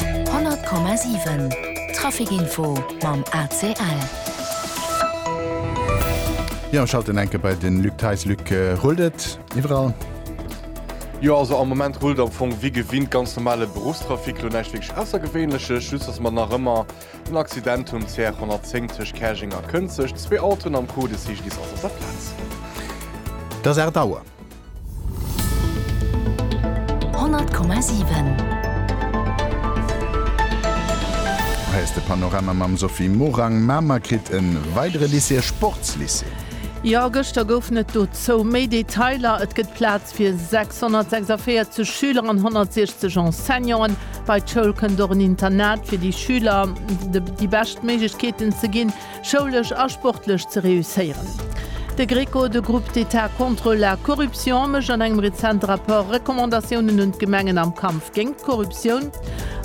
100,7 Trafic Info mam ACL. Jo, schalten eng Kéier bei de Luc Theis. Luc, rullt et iwwerall? Jo, also am Moment rullt et am Fong wéi gewinnt, ganz normale Beruffstrafic, elo näischt wierklech Aussergewéinleches, just dass mer nach ëmmer en Accident hunn, CR 110 tëscht Käerjeng a Kënzeg, zwee Autoen am Code Seegedis ass op der Plaz. Et ass 8 Auer. Hei ass de Panorama mam Sophie Morang. Mamer kritt e weidere Lycée, e Sportslycée. Jo, gëschter goufen et dozou méi Detailer. Et gëtt Plaz fir 646 Schüler an 160 Enseignanten. Bei d'Schoul kënnt och en Internat, fir de Schüler déi bescht Méiglechkeeten ze ginn. schoulesch a sportlech ze reusséieren. De Greco, de Groupe d'Etat contre la corruption, mécht an engem rezente Rapport Recommandatiounen un d'Gemengen am Kampf géint d'Korruptioun.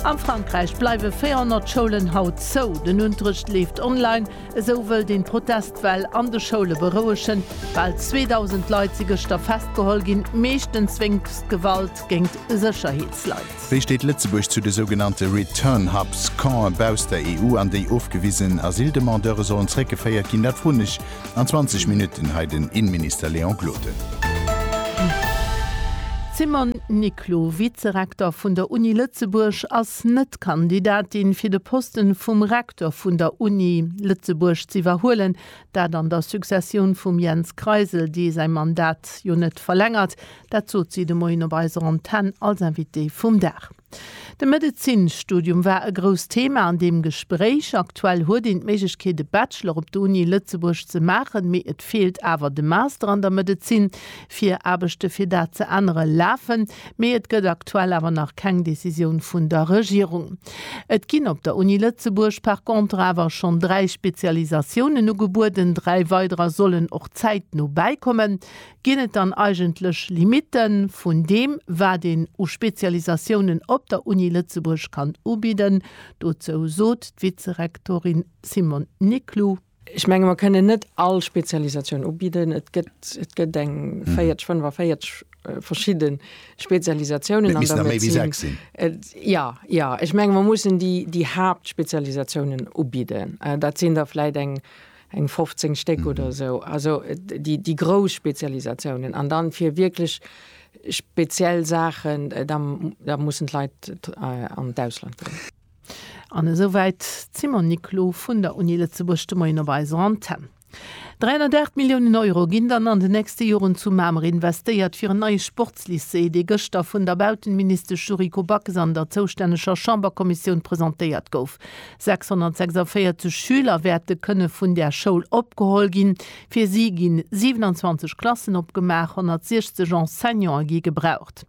A Frankräich bleiwe 400 Schoulen haut zou, den Unterrecht leeft online. Esou wëllt een d'Protestwell an de Schoule berouegen. Bal 2.000 Leit si gëschter festgeholl ginn, meeschtens wéinst Gewalt géingt Sécherheetsleit. Wéi steet Lëtzebuerg zu de sougenannte Return Hubs, Campen bausst der EU, an déi ofgewisen Asyldemandeure sollen zréckgeféiert ginn? Dat froen ech an 20 Minutten hei den Innenminister Léon Gloden. D'Simone Niclou, Vizerektor vun der Uni Lëtzebuerg, ass net Kandidatin fir de Poste vum Rektor vun der Uni Lëtzebuerg z'iwwerhuelen. Dat an der Successioun vum Jens Kreisel, dee säi Mandat jo net verlängert, Dat sot si de Moien op eiser Antenn als Invitée vum Dag. De Medezinsstudium war e grousst Thema an deem Gespréich. Aktuell huet een d'Méiglechkeet e Bachelor op der Uni Lëtzebuerg ze maachen, mee et feelt awer de Master an der Medezin. Vir Aarbechte fir dat ze ännere lafen, mee et gëtt aktuell awer nach keng Decisioun vun der Regierung. Et ginn op der Uni Lëtzebuerg par contre awer schonn dräi Spezialisatiounen ugebueden, dräi weiderer sollen och zäitno bäikommen. Ginn et dann eigentlech Limitte vun deem, wat een u Spezialisatiounen op der Uni Lëtzebuerg kann ubidden? Dozou sot d'Vizerektorin Simone Niclou. Ech menge mer kënnen net all Spezialisatioun ubidden. Et gëtt, et gëtt eng 40, 45 verschidde Spezialisatiounen an der Medezin. Jo, jo. Ech menge mer mussen déi, déi Haaptspezialisatiounen ubidden. Dat sinn der vläicht eng. eng 15 Stéck oder esou, also déi grouss Spezialisatiounen an dann fir wierklech speziell Saachen, da mussen d'Leit an d'Ausland goen. An esou wäit d'Simone Niclou vun der Uni Lëtzebuerg de Moien op eiser Antenn. 308 Milliounen Euro ginn dann an den nächste Joren zu Mamer investéiert, fir en neie Sportslycée, dee gëschter vun der Bautenministesch Yuriko Backes an der zoustänneger Chamberkommissioun presentéiert gouf. 646 Schüler wäerte kënne vun där Schoul opgeholl ginn. Fir si gi 27 Klassen opgemaach, 160 Enseignante gi gebraucht.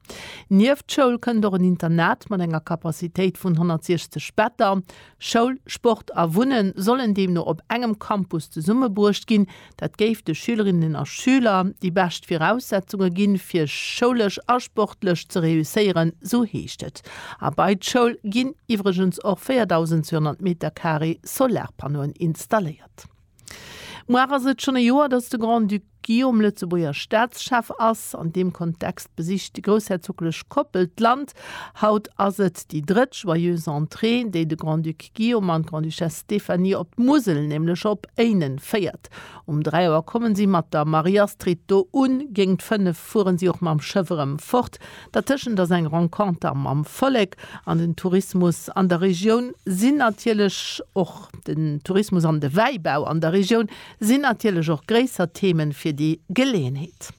Nieft d'Schoul kënnt och en Internat mat enger Capacitéit vun 160 Better. Schoul, Sport a Wunne sollen deemno op engem Campus zesummebruecht ginn, Dat géif de Schülerinnen a Schüler déi bescht Viraussetzunge ginn, fir schoulesch a sportlech ze reusséieren, sou heescht et. A bei d'Schoul ginn iwwregens och 4.200 Metercarré Solarpannoen installéiert. Muar ass et schonn e Joer, datt de Grand-Duc Guillaume Lëtzebuerger Staatschef ass. An deem Kontext besicht déi groussherzoglech Koppel d'Land. Haut ass et déi drëtt Joyeuse Entrée, déi de Grand-Duc Guillaume an d'Grande-Duchesse Stéphanie op d'Musel, nämlech op Éinen, féiert. Um 3 Auer kommen si mat der Marie-Astrid do un. Géingt 5 fueren si och mam Schëff erëm fort. Dertëschent ass eng Renconter mam Vollek an den Tourismus an der Regioun sinn natierlech och den Tourismus an de Wäibau an der Regioun sinn natierlech och gréisser Themen fir déi Geleeënheet.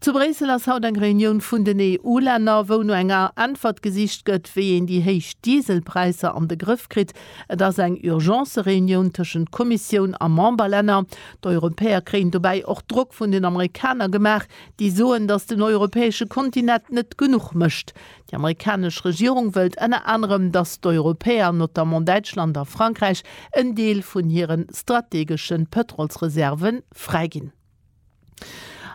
Zu Bréissel ass haut eng Reunioun vun den EU-Länner, wou no enger Äntwert gesicht gëtt, wéi een déi héich Dieselpräisser an de Grëff kritt. Et ass eng Urgence-Reunioun tëschent Kommissioun a Memberlänner. D'Europäer kréien dobäi och Drock vun den Amerikaner gemaach, déi soen, datt den europäesche Kontinent net genuch mécht. Déi amerikanesch Regierung wëllt ënner anerem, datt d'Europäer, notamment Däitschland a Frankräich, en Deel vun hire strategesche Pëtrolsreserve fräiginn.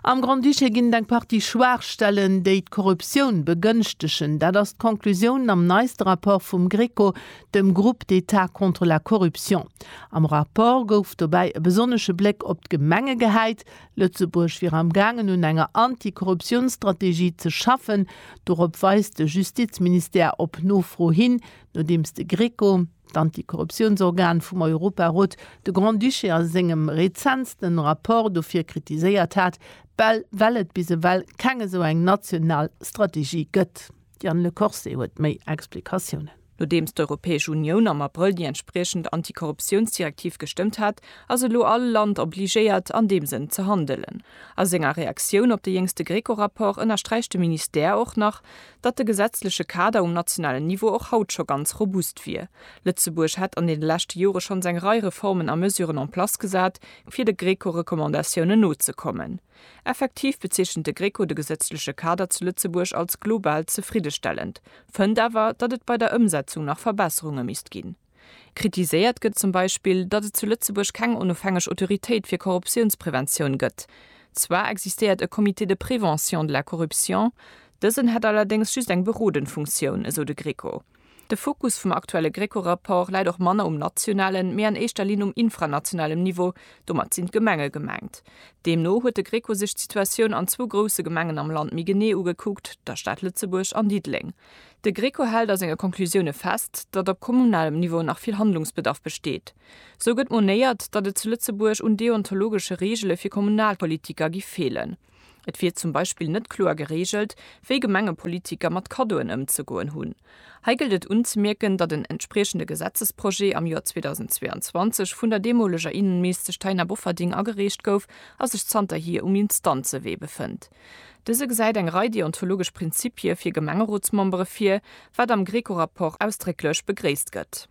Am Grand-Duché ginn et eng Partie Schwaachstellen, déi d'Korruptioun begënschtegen. Dat ass d'Conclusioun am neiste Rapport vum GRECO, dem Groupe d'État contre la corruption. Am Rapport gouf dobäi e besonnesche Bléck op d'Gemenge gehäit. Lëtzebuerg wier am gaangen un enger Anti-Korruptiounsstrategie ze schaffen. Dorop weist de Justizministère op Nofro hin, nodeems de GRECO, d'Antikorruptiounsorgan vum Europarot, de Grand-Duché a sengem rezentsten Rapport dofir kritiséiert hat, bal well et bis ewell keng esou eng national Strategie gëtt. D'Diane Le Corset huet méi Explikatiounen. Nodeems d'Europäesch Unioun am Abrëll déi entspriechend Antikorruptiounsdirektiv gestëmmt hat, ass elo all Land obligéiert, an deem Sënn ze handelen. A senger Reaktioun op de jéngste GRECO-Rapport ënnersträicht de Ministère och nach, datt de gesetzleche Kader um nationalen Niveau och haut scho ganz robust wier. Lëtzebuerg hätt an deene leschte Jore schonns eng Rei Reformen a Mesuren en place gesat, fir de Greco-Recommandatiounen nozekommen. Effektiv bezeechent de Greco de gesetzleche Kader zu Lëtzebuerg als global zefriddestellend, fënnt awer, datt et bei der Ëmsetzung nach Verbesserunge misst ginn. Kritiséiert gëtt zum Beispill, datt et zu Lëtzebuerg keng onofhängeg Autoritéit fir Korruptiounspreventioun gëtt. Zwar existéiert e Comité de prévention de la corruption, dësen hätt allerdéngs just eng berodend Funktioun, esou de Greco. De Fokus vum aktuelle Greco-Rapport läit och manner um nationalen, mee an éischter Linn um infranationalem Niveau, domat sinn d'Gemenge gemengt. Deemno huet de Greco sech d'Situatioun an zwou grousse Gemengen am Land méi genee ugekuckt, der Stad Lëtzebuerg an Diddeleng. De Greco hält a senge Conclusioune fest, datt op kommunalem Niveau nach vill Handlungsbedarf besteet. Sou gëtt monéiert, datt et zu Lëtzebuerg un deontologesche Reegele fir Kommunalpolitiker gi feelen. Et wier zum Beispill net kloer gereegelt, wéi Gemengepolitiker mat Kaddoen ëmzegoen hunn. Hei gëllt et unzemierken, datt en entspriechende Gesetzesprojet am Joer 2022 vun der deemoleger Innenministesch Taina Bofferding agereecht gouf a sech zanterhier um Instanzewee befënnt. Dëse gesäit eng Rei deontologesch Prinzippie fir Gemengerotsmembere vir, wat am Greco-Rapport ausdrécklech begréisst gëtt.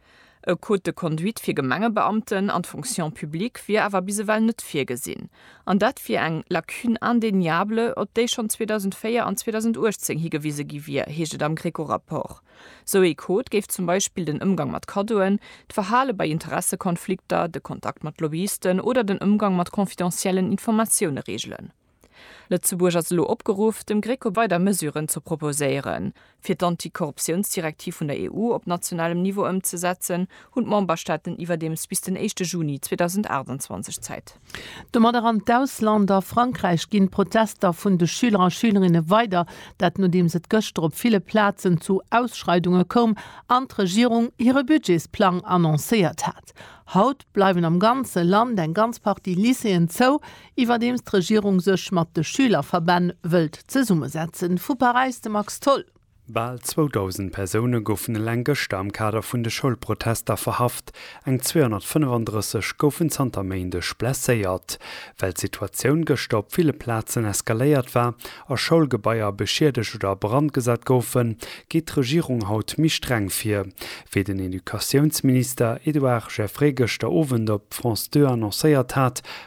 E Code de conduite fir Gemengebeamten an d'Fonction publique wier awer bis ewell net virgesinn, an dat wier eng Lacune indéniable, op déi schonn 2004 an 2018 higewise gi wier, heescht et am Greco-Rapport. Sou ee Code géif zum Beispill den Ëmgang mat Kaddoen, d'Verhale bei Interessekonflikter, de Kontakt mat Lobbyisten oder den Ëmgang mat confidentiellen Informatioune reegelen. Lëtzebuerg ass elo opgeruff, dem GRECO weider Mesuren ze proposéieren. Fir d'Antikorruptiounsdirektiv vun der EU op nationalem Niveau ëmzesetzen, hunn d'Memberstaaten iwwerdeems bis den éischte Juni 2028 Zäit. Domat eran d'Ausland. A Frankräich ginn d'Protester vun de Schüler a Schülerinne weider, dat nodeems et gëschter op ville Plazen zu Ausschreidunge koum an d'Regierung hire Budgetsplang annoncéiert hat. Haut bleiwen am ganze Land eng ganz Partie Lycéeën zou, Iwwerdeems d'Regierung sech mat de Schülerverbänn wëllt zesummesetzen. Vu Paräis de Max Tholl. Bal 2.000 Persoune goufen eleng gëschter am Kader vun de Schoulprotester verhaft, eng 235 goufen zanter Méindeg blesséiert. Well d'Situatioun gëschter op ville Plazen eskaléiert war a Schoulgebaier beschiedegt oder a Brand gesat goufen, geet d'Regierung haut méi streng vir, wéi den Educatiounsminister Edouard Geffray gëschter Owend op France 2 annoncéiert hat.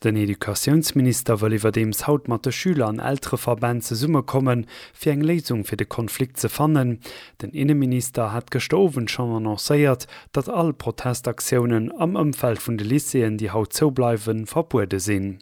Den Educatiounsminister wëll iwwerdeems haut mat de Schüler an Eltereverbänn zesummekommen, fir eng Léisung fir de Konflikt ze fannen. Den Inneminister hat gëschter Owend schonn annoncéiert, datt all Protestaktiounen am Ëmfeld vun de Lycéeën, déi haut zou bleiwen, verbuede sinn.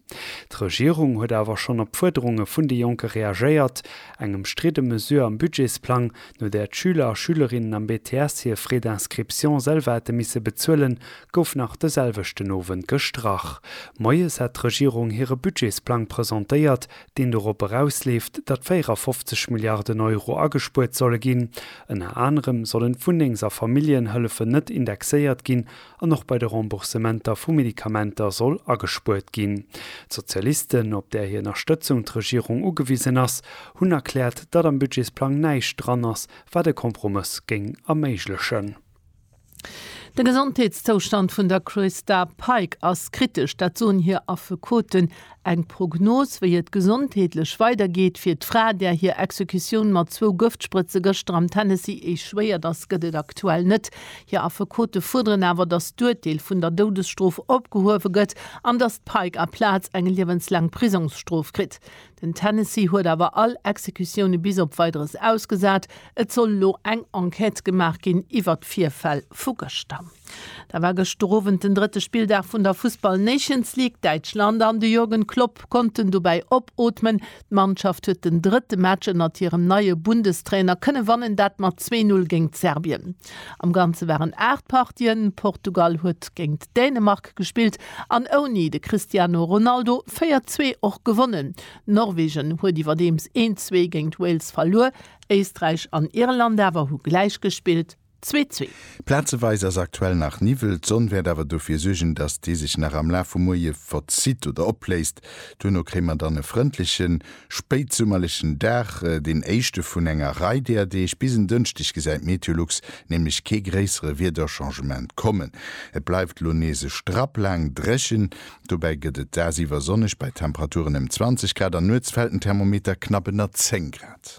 D'Regierung huet awer schonn op d'Fuerderunge vun de Jonke reagéiert. Eng ëmstridde Mesure am Budgetsplang, no där d'Schüler a Schülerinnen am BTS hir Frais d'inscription selwer hätte misse bezuelen, gouf nach de selwechten Owend gestrach. Moies hat d'Regierung hire Budgetsplang presentéiert, deen dorop erausleeft, datt 54 Milliarden Euro agespuert solle ginn. Ënner anerem sollen d'Wunnengs a Familljenhëllefen net indexéiert ginn an och bei de Remboursementer vu Medikamenter soll agespuert ginn. D'Sozialisten, op där hir Ënnerstëtzung d'Regierung ugewisen ass, hunn erkläert, datt am Budgetsplang näischt dran ass, wat e Kompromëss géing erméiglechen. De Gesondheetszoustand vun der Christa Pike ass kritesch, dat soen hir Affekoten. Eng Prognos, wéi et gesondheetlech weidergeet fir d'Fra, där hir Exekutioun mat zwou Gëftsprëtze gëschter am Tennessee échouéiert ass, gëtt et aktuell net. Hir Affekote fuerderen awer, datt d'Urteel vun der Doudesstrof opgehuewe gëtt an datt d'Pike aplaz eng liewenslaang Prisongsstrof kritt. Den Tennessee huet awer all Exekutioune bis op Weideres ausgesat. Et soll elo eng Enquête gemaach ginn iwwert d'Virfäll vu gëschter. Da war gëschter Owend den drëtte Spilldag vun der Fussball Nations League. Däitschland an de Jürgen Klopp konnten dobäi opootmen. D'Mannschaft huet den drëtte Match ënnert hirem neie Bundestrainer kënne wannen, dat mat zwee Null géint Serbien. Am Ganze waren 8 Partien, Portugal huet géingt Dänemark gespillt an ouni de Cristiano Ronaldo 4 zwee och gewonnen. Norwegen huet iwwerdeems 1 zwee géingt Wales verluer, Éisträich an Irland awer hu gläich gespillt, zwee zwee. Plazeweis ass aktuell nach Niwwel, d'Sonn wäert awer dofir suergen, dass déi sech nach am Laf vum Muerje verzitt oder opléist. Duerno kréie mer dann e frëndlechen spéitsummerlechen Dag, deen éischte vun enger Rei deeër Deeg. Bis en Dënschdeg gesäit Meteolux nämlech kee gréissere Wiederchangement kommen. Et bleift elo nees e Strapp laang dréchen, dobäi gëtt et dagsiwwer sonneg bei Temperaturen ëm 20 Grad an nuets fält den Thermometer knapp ënner 10 Grad.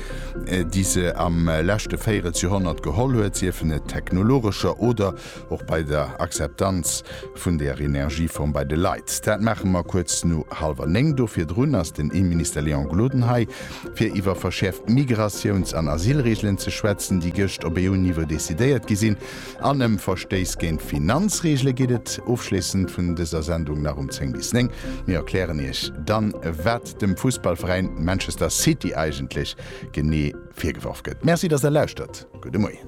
déi se am leschte Véirelsjorhonnert geholl huet, siefen et technologescher oder och bei der Akzeptanz vun der Energieform bei de Leit. Dat maache mer kuerz no hallwer néng. Do virdrun ass den Innenminister Léon Gloden hei, fir iwwer verschäerft Migratiouns an Asylreegelen ze schwätzen, déi gëscht op EU-Niveau decidéiert gi sinn, an ëm Verstéiss géint Finanzreegele geet et ofschléissend vun dëser Sendung nach um zéng bis néng. Mir erklären Iech dann, wat dem Fussballveräin Manchester City eigentlech genee virgeworf gëtt. Merci, dass der lauschtert. Gudde Moien.